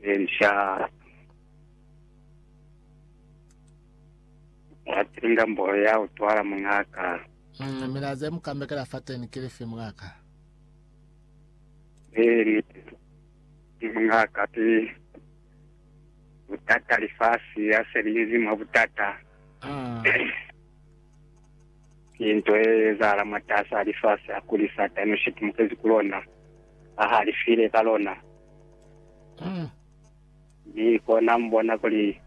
Elisha wa tinda mbolo ya utwala muñaa ka. Umm milaza ye mukambekela fateni kilifi muñaa ka? Ee niti ki muñaa ka ki butata lifasi ya se liñezi mwa butata. Umm. Ki nto ye ezahala mwatas'a lifasi hakuli Satani u shitumukezi ku lona, ha halifile ka lona, mi kona mu bona kuli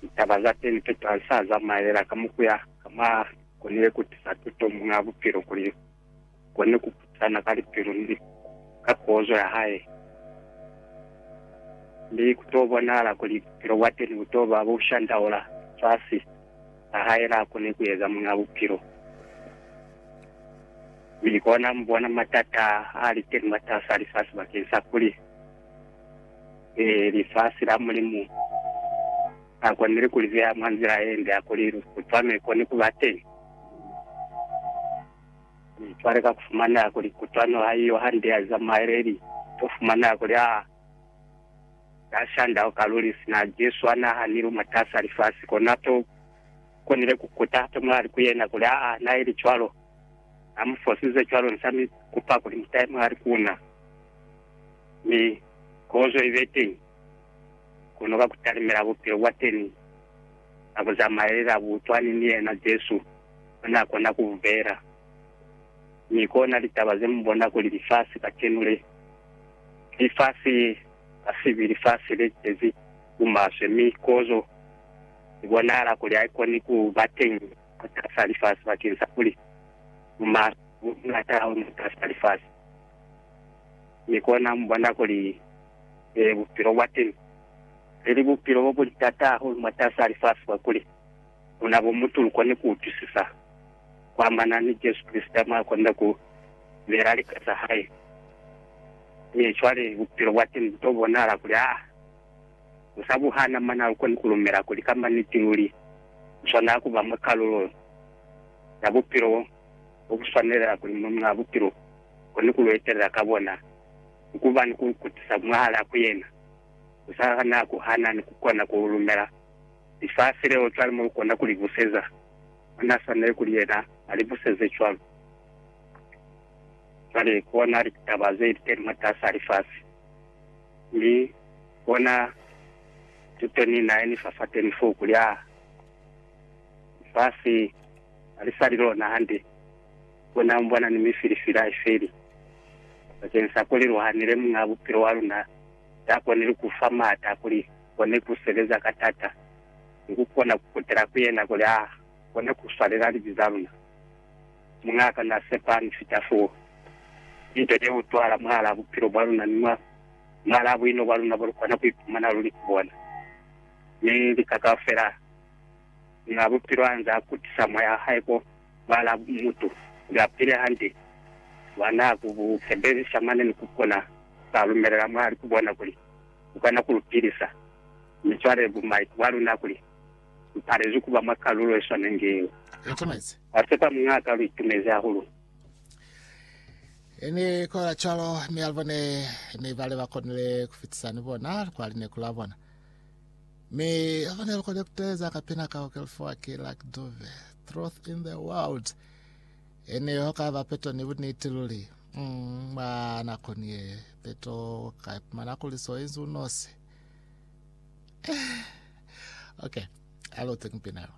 litaba za teni tuto ha li sa zamaela ka mukuya ka mwa konile ku tisa tuto muñ'a bupilo kuli kone ku putana ka lipilu ni ka kozo ya hae, mi ku to bonahala kuli bupilo bwa teni bu to ba bu shandaula fasi a hae la kone ku eza Muñ'a Bupilo. Mi kona mu bona matata a li teni mwatas'a lifasi bakeng sa kuli lifasi la Mulimu a konile ku li beha mwa nzila ye nde ya kuli lutwame kone ku ba teni. Mi cwale ka kufumana kuli kutwano haiyo hande ya za muhaeleli, to fumana kuli ha na shanda ho ka luli. Sina Jesu ha na hanilwe mwatasa lifasi, kona to konile ku kuta hape mulali ku yena kuli, Aa, na ili cwalo. Na mu fosize cwalo, ni sa mi kupa kuli mu tahe mulali ku na, mi kozo ibe teñi, kono ka ku talimela bupilo bwa teni. na ku zamaelela butwani ni yena, Jesu o n'a kona ku bubela. Mi kona litaba ze mu bona kuli lifasi kacenu le, ki lifasi la sibi, lifasi le cezi bumaswe, mi kozo i bonahala kuli ha i koni ku ba teñi mwatasa lifasi bakeng sa kuli bumaswe bu buñata hahulu mwatasa lifasi. Mi kona mu bona kuli, ee, bupilo bwa teñi. Leli bupilo bo buli tata hahulu mwatas'a lifasi kakuli muna bo mutu lukoni ku utwisisa kuamana ni Jesu Kreste mwa konda ku bela lika za hae. Mi cwale bupilo bwateni bu to bonahala kuli ha bu sa buhana, mane ha lu koni ku lumela kuli kamba niti luli lu swanela ku ba mwa kalulo ya bupilo bo bu swanelela kuli mube mwa bupilo lukoni ku lu etelela ka bona ni ku ba ni ku lu kutisa mwahal'a ku yena. Za na ku hana ni ku kona ku lumela lifasi leo, cwale mo lu kona ku li buseza. Mwa na swaneli kuli yena a li buseze cwalo. Cwale, kona litaba ze li teli mwatas'a lifasi, mi kona tuto ni na ye ni fa fateni foo, kuli, Aa, lifasi ha li sa li lona hande. Kona mu bona ni mifilifili ha i feli, bakeng sa kuli lu hanile Muñ'a Bupilo wa luna za konile ku fa maata kuli kone ku sebeza ka taata, ni ku kona ku kutela ku yena kuli a kone ku swalela libi za luna. Muñaaka na sepani fita foo. Linto ye utwahala mwahalaa bupilo bwa luna ni mwahalaa buino bwa luna bo lu kona ku ipumana lu li ku bona, mi lika kaufela. nga bupilo anze a kutisa moya hae ko bala mutu ya pile hande wa na ku bu sebelisa mane ni ku kona ba lumelela mwa li ku bona kuli u kona ku lu pilisa. Mi cwale bu maikubo a luna kuli lu palezwi kuba mwa kalulo ye swanengi yeo. Wa sepa muñaa ka lu itumezi hahulu. Ni kola cwalo, mi alibone ni bale ba konile kufitisa ni bona kwa lineku la bona. Mi afane lukole kuteza kapena ka okelfoa ke lak dove truth in the world ene ho ka ba peto ni buniti luli mm, ba nako ni ye peto ka ipumana kuli so inzi unosi okay alo tekmpinalo